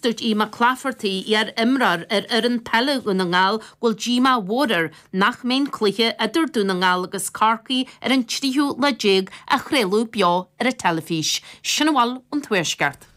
dúirt Eoghan Bán Mac Gallchóir, iar imreoir ar fhoireann peile Dhún na nGall go bhfuil díomá mhór air nach mbeidh an cluiche idir Dún na nGall agus Corcaigh ar an 13ú lá déag á chraoladh beo ar an teilifís. Sin a bhfuil ón Tuaisceart.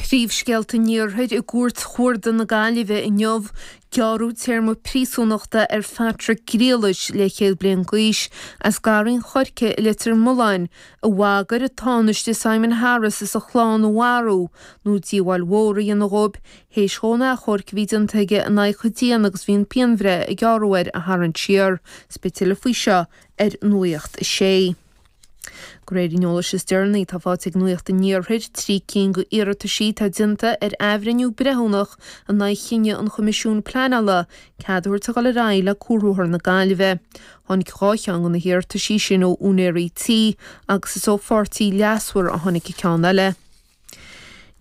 Príomhscéalta an Iarthair I gCúirt Chuarda na Gaillimhe inniu, gearradh téarma príosúnachta ar Phatrick Griallais 40 bliain d'aois as Garraí an Choirce i Leitir Mealláin a bhagair an Tánaiste Simon Harris is a chlann a mharú nó díobháil mhór a dhéanamh dhóibh théis dhó an achomharc a bhí déanta aige in aghaidh a dhéine agus a bhí an pianbhreith a gearradh air a tharraingt siar. Beidh tuilleadh faoi seo ar Nuacht a Sé. De réir an eolais is deireanaí atá faighte ag Nuacht an Iarthair, trí cinn d'iarrataisí atá déanta ar athbhreithniú breithiúnach in aghaidh chinneadh an Choimisiúin Pleanála cead a thabhairt a dhul ar aghaidh le cuarbhóthar na Gaillimhe. Tháinig dhá cheann de na hiarrataisí sin ó úinéirí tí agus is ó pháirtí leasmhar a tháinig an ceann eile.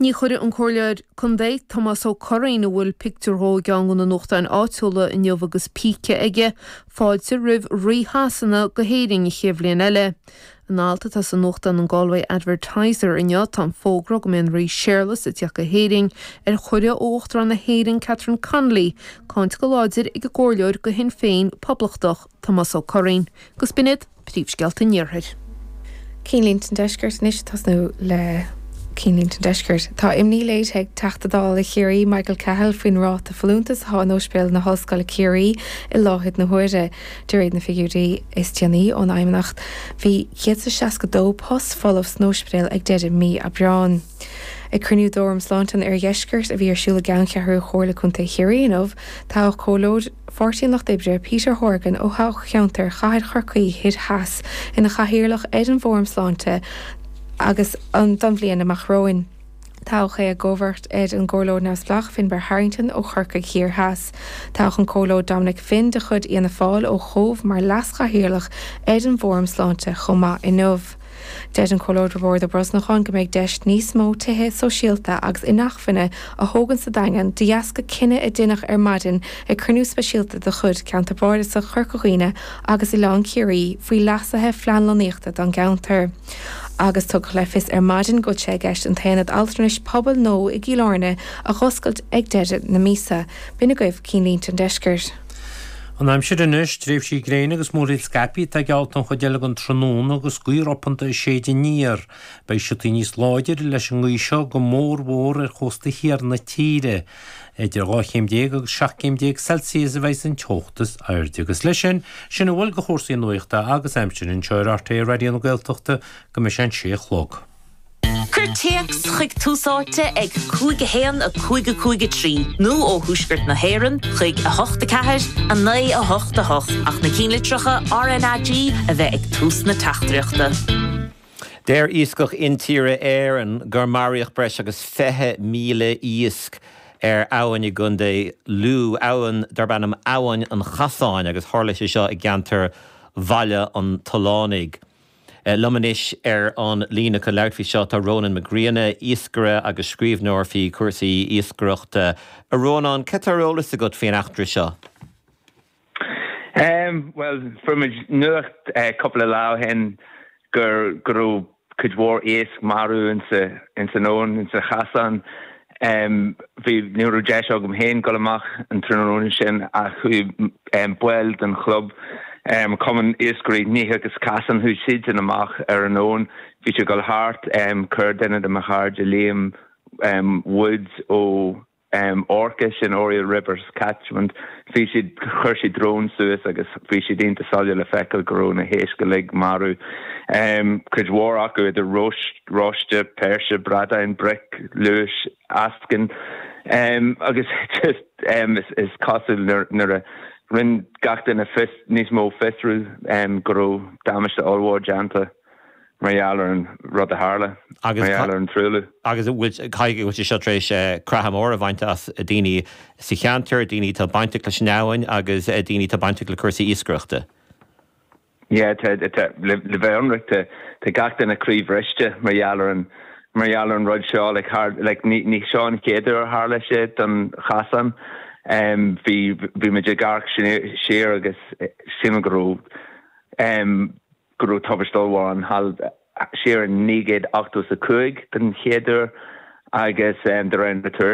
Ní chuirfidh an Comhairleoir Contae, Tomás Ó Curraoin, a bhfuil pictiúr dhó i gceann de na nuachtáin áitiúla inniu agus píce aige, fáilte roimh Rí Shasana go hÉirinn an chéad bhliain eile. In alt atá sa nuachtán an Galway Advertiser inniu tá an fógra go mbeidh an Rí Séarlas ag teacht go hÉirinn, ar chuireadh ó Uachtarán na hÉireann, Catherine Connolly, cáinte go láidir ag an gcomhairleoir de Shinn Féin Poblachtach, Tomás Ó Curraoin. Agus b'in iad príomhscéalta an iarthair. Cinnlínte an Deiscirt, Anois tosnú le cinnlínte an Deiscirt. Tá imní léirithe ag Teachta Dála Chiarraí Michael Cahill faoin ráta folúntais atá in Ospidéal na hOllscoile Ciarraí i láthair na huaire. De réir na figiúirí is déanaí ón bhFeidhmeannacht bhí 162 post folamh san óispidéal ag deireadh mí Aibreáin. Ag cruinniú d'Fhóram Sláinte an Oirdheiscirt a bhí ar siúl i gceanncheathrú Chomhairle Contae Chiarraí inniu toghadh comhairleoir Pháirtí an Lucht Oibre Peter Horgan ó thoghcheantar Chathair Chorcaí Thoir Theas ina chathaoirleach ar an bhFóram Sláinte don bhliain amach romhainn. Toghadh é i gcomharbacht ar an gComhairleoir Neamhspleách Finbar Harrington ó Chorcaigh Thiar Theas. Toghadh an Comhairleoir Dominic Finn de chuid Fhianna Fáil ó Chóbh mar Leas-Chathaoirleach ar an bhFóram Sláinte chomh maith inniu. Deir an Comhairleoir Roibeárd Ó Brosnacháin go mbeidh deis níos mó tithe sóisialta agus inacmhainne a thógaint sa Daingean de dheasca cinneadh a deineadh ar maidin ag cruinniú speisialta de chuid Cheantar Bardasach Chorca Dhuibhne agus Oileán Ciarraí faoi leasuithe i bplean lonnaíochta don gceantar. agus tugadh le fios ar maidin go bhfuil sé i gceist an tAonad Altranais Pobail nua i gCill Airne a dh'oscailt ag deireadh na míosa. B'in agaibh cinnlínte an deiscirt. An aimsir anois, tréimhsí gréine agus múraíl scaipthe atá geallta don chuid eile den tráthnóna agus gaoth ropanta ag séideadh aniar. Beidh siotaí níos láidre leis an ngaoth seo go mór mhór ar chósta thiar na tíre. Idir dhá chéim déag agus seacht gcéim déag Celsius a bheidh an teocht is airde agus leis sin, sin a bhfuil de chúrsaí nuachta agus aimsire anseo ar RTÉ Raidió na Gaeltachta go mbeidh sé an sé a chlog. Cuir téacs chuig Tús Áite ag 5 1 5 5 3 nó ó Thuaisceart na hÉireann chuig 8 4 9 8 8 ach na cinnlitreacha RNAG a bheith ag tús na teachtaireachta. Deir Iascach Intíre Éireann gur maraíodh breis agus 20,000 iasc ar abhainn i gContae Lú, abhainn darb ainm Abhainn an Chasáin agus tharla sé seo i gceantar Bhaile an Tallúnaigh. Liom anois ar an líne chun labhairt faoi seo tá Rónán Mac Grianna, iascaire agus scríbhneoir faoi chúrsaí iascaireachta. A Rónáin, cad tá ar eolas agat faoin eachtra seo? Bhuel, fuair muid nuacht cúpla lá ó shin go raibh cuid mhór iasc marbh ins an abhainn, ins an Chasán. Ní raibh deis agam féin dul amach an tráthnóna sin ach chuaigh baill den chlub, Cumann Iascairí Níth agus Casán, chuaigh siadsan amach ar an abhainn. Bhí siad ag dul thart, chuir duine de mo chairde, Liam Woods ó. ORCA, sin Oriel Rivers catchment. Bhí siad, chuir siad drón suas agus bhí sé iontach soiléir le feiceáil go raibh na héisc uilig marú. Cuid mhór acu idir rois, roiste, péirse, bradáin, bric, lúis, eascainn. Agus just is cosúil nuair a rinn gach duine fios, níos mó fiosrú go raibh damáiste ollmhór déanta. Mar gheall ar an rud a tharla. Mar gheall ar an truailliú. Agus an bhfuil, caithfidh go bhfuil sé seo tar éis creathadh mór a bhaint as daoine sa cheantar, daoine atá bainteach leis an abhainn agus daoine atá bainteach le cúrsaí iascaireachta. Yeah, tá, tá, le bheith ionraic, tá, tá gach duine croíbhriste mar gheall ar an, mar gheall ar an rud seo, like, thar, like, ní, ní seo an chéad uair a tharla sé don Chasán. Em, bhí, bhí muid ag amharc siar agus shíl mé go raibh, em, go raibh tubaiste ollmhór ann siar in 1985 den chéad uair agus de réir na tuairisce.